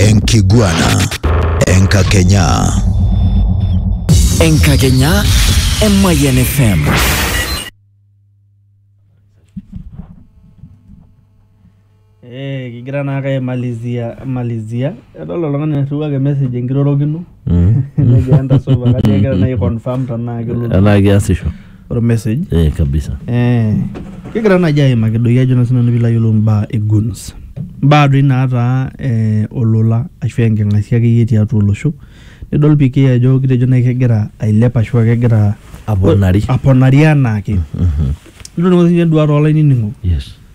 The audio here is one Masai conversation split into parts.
Enkiguana. Enkakenya. Enkakenya e Mayian FM. Eh, kigira naake aimalizia malizia. Edol oltung'ani oirriwaki message enkirorokino. Negira entasova kajo kegira naa aiconfirm tenaa kelotu Enaa keasisho. ormessage. Eh, kabisa. Eh, kigira naaji aimaki doi ajo naa sinanu piilo ayiolou imbaa e guns. Imbaa doi naataa eh, olola ashu enking'asia akeyie tiatua olosho. Nidol PK ajo kitejo nai kegira ailep ashu kegira Aponari. aponari anaake. Nidol toi sininye enduata olainining'ok. Yes.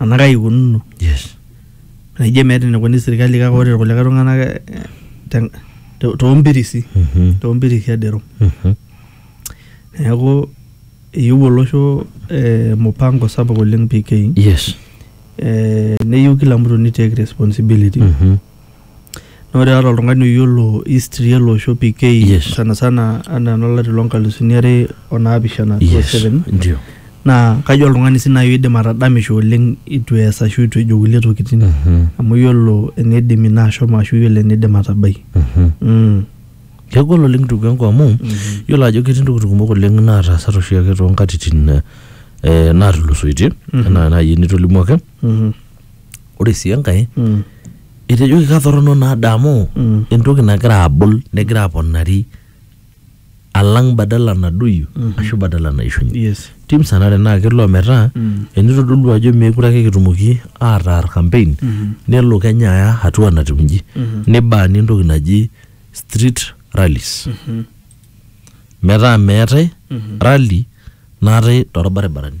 ena kai ikununo yes naijo emeeta enikoni sirkali kake ore irkulikae tung'anak eh, te- to- toompirisi Mhm. toompirisi edero Mhm. neeku eyieu olosho eh, mupango sapuk oleng PK yes eh, neyieu kila mtu ni take responsibility Mhm. Naa ore ata oltung'ani oyiolo history ele osho PK Yes. sana sana anaa enolari loo nkalusuni are o naapishana two Yes. seven Ndio. naa kajo oltung'ani sii naaji oidim atadamisho oleng itu ees ashu itu ejo kulie tokitin Mhm. amu yiolo eneidim ina ashomo ashu yiolo eneidim atabai. Mhm. Mm. Kegol oleng ndugu yangu amu yiolo ajo ketii ntokitin kumok oleng naataasate oshiake toonkatitin eh, naatulusoitie Mhm. enaa naaji enitolimuo ake ore sii enkae etejo kikatorrono naa daa amu entoki nagira abul negira aponari alang badala nadoyio ashu badala naishunye yes tim sanare naa kelo ometaa enitodolu ajo meekure ake kitumoki ataar campaign nelo kenya aya hatua natiu inji nibaani entoki naji street rallies metaa meetae rally naatae torbaribarani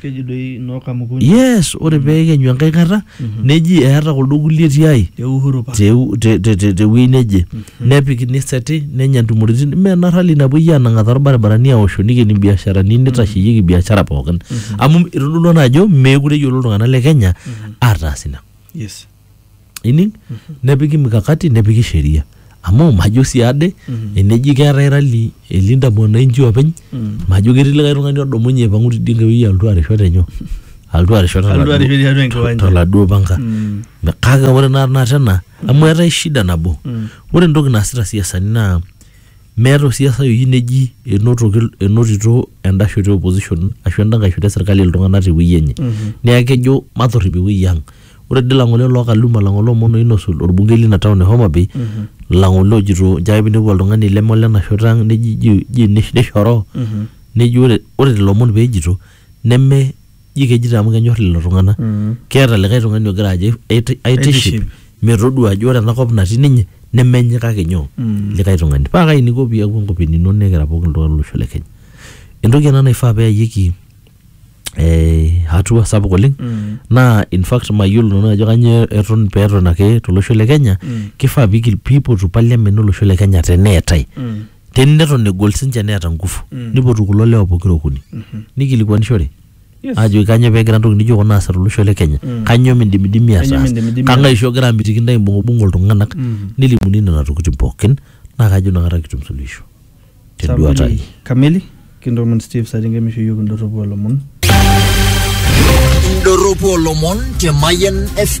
Keji doi noo kamukunyi. Yes, ore pee ekenyu enkae kata neji eeta kuldo kulie tiai Te Uhuru Park. te, te, te, te, te wuei neje nepiki niseti nenya ntumoritin mme ena rally napuoi aanang'aa torbaribarani aosho nikeni mbiasharani nitasheyieki biashara pookin amu itodolua naa ajo meekure eyiolo iltung'anak le Kenya ataas ina. Yes. ining nepiki mikakati nepiki sheria amu majo sii ade eneji keetae rali elinda mwananchi openy majo ketii likae tung'ani odumunye aipang'u tidie nkae wueji alotu arisho tenyoo alotu arisho Alotu toladuo- arisho tiatua enkiwanja. toladuo panga Mm. kake ore naa tenakata ena amu eetae shida nabo ore entoki naasita isiasani naa Meeta osiasai oyieu neji enotoki enotito enda shoto e opposition ashu enda nkae shoto e serkali iltung'anak tewuei enye. Neeku kejo matorrip ewuei ang. Ore dii lang'ole oloo Kaluma, lang'ole omon oinosu orbungei lina town e Homa Bay, lang'ole ojito nchoo ake pinepu oltung'ani leme olena shoto ang neji ji ji nishoroo, neji ore ore lelo omon peejito neme ji kejito amu kenyor lelo tung'anak keeta likae tung'ani ogira ajo aiti- aitiship Aitiship. metodua ajo ore enakop natii ninye nemenye kake nyoo likae tung'ani paa kai iniko piaku enkop enino nikira pooki iltung'anak lolosho le kenya entoki ena naifaa peyayieki eh, hatua sapuk oleng naa in fact mayiolo nanu ajo kanyoo eton peton ake tolosho le kenya kifaa pigil piipotu parliament olosho le kenya teneetae teni neton egol sinche neeta ngufu Mm. nipotu kulo lewa pokira okuni Mhm. nikilikuanishore Yes. ajoki kanyoo pegira ntoki nijo kuna aasa tolosho le kenya Mm. kanyoo mindimidimi Kanyoo ataas mindimidimi kang'ae oshi ogira amitiki ntae imbung'ubung'u iltung'anak Mhm. nelimuni nena tokitin pookin naa kajo inakata kitum suluhisho tenduata Saa ai mbili kamili kintoomon steve saringe misho yiok indorropu olomon Indorropu olomon te Mayian FM.